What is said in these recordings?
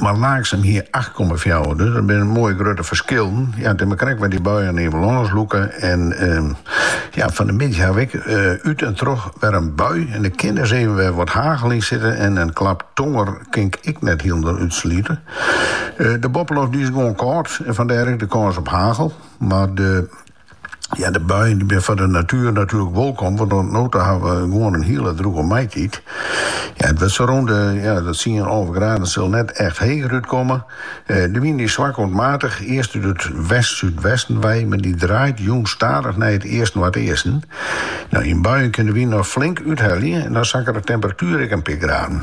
Mar Laaksum hie acht komma fjouwer, dus dat binne moaie grutte ferskillen. Ja, it is mar krekt wêr't dy buien oer it lân lûke. En ehm, ja, fan de middei hawwe wy út en troch wer in bui en der kin dus even wer wat hagel yn sitte en in klap tonger kin ik ek net hielendal útslute. De boppeloft die is gewoan kâld en fandêr ek de kâns op hagel, mar de. Ja, de buien die binne foar de natuer natuerlik wolkom, want oant no toe hawwe we gewoan in hiele droege maitiid. Ja, it wurdt sa rûn de ja, de tsien, alve graden sil net echt heger útkomme. Eh, de wyn dy is swak oant matich, earst út it west-súdwesten wei, mar die draait jûns stadich nei it east-noardeasten. No, yn buien kin de wyn noch flink úthelje en dan sakket de temperatuer ek in pear graden.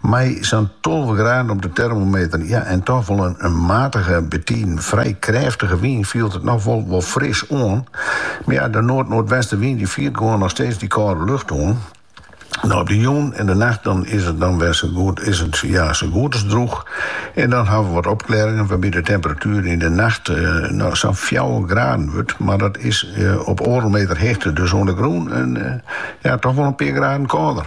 Mei sa'n tolve graden op de termometer, ja, en toch wol in matige, betiden frij krêftige wyn, fielt it noch wol fris oan. Mar ja, de noard-noardwestenwyn dy fiert gewoan noch steeds dy kâldere lucht oan. No op de jûn en de nacht dan is it dan wer sa goed as drûch. En dan hawwe we wat opklearringen wêrby't de temperatuer yn de nacht sa'n fjouwer graden wurdt, mar dat is op oardel meter heechte, dus oan de grûn in ja, toch wol in pear graden kâlder.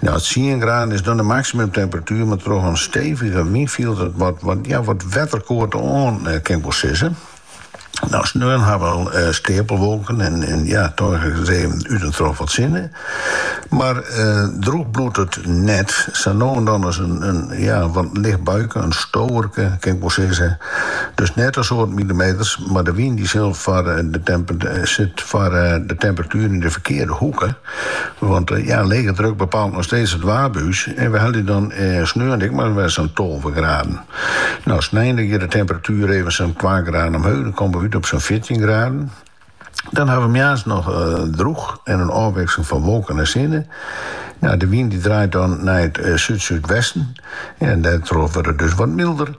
No, tsien graden is dan de maksimumtemperatuer, mar troch in stevige wyn fielt it wat wetterkâld oan, kin ik wol sizze. No, sneon hawwe we steapelwolken en dan sjogge we út en troch wat sinne. Mar drûch bliuwt it net, sa no en dan ris in wat licht buike, in stoarke kin ik wol sizze. Dus net in soad milimeters, mar de wyn dy sit foar de temperatuer yn de ferkearde hoeke. Want ja, lege druk bepaalt noch steeds it waar by ús en we helje dan sneon ek mar wer sa'n tolve graden. No, snein giet de temperatuer even sa'n twa graden omheech, dan komme we út op sa'n fjirtjin graden. Dan hawwe we moarns noch drûch en in ôfwikseling fan wolken en sinne. No, de wyn dy draait dan nei it súd-súdwesten. En dêrtroch wurdt it dus wat milder.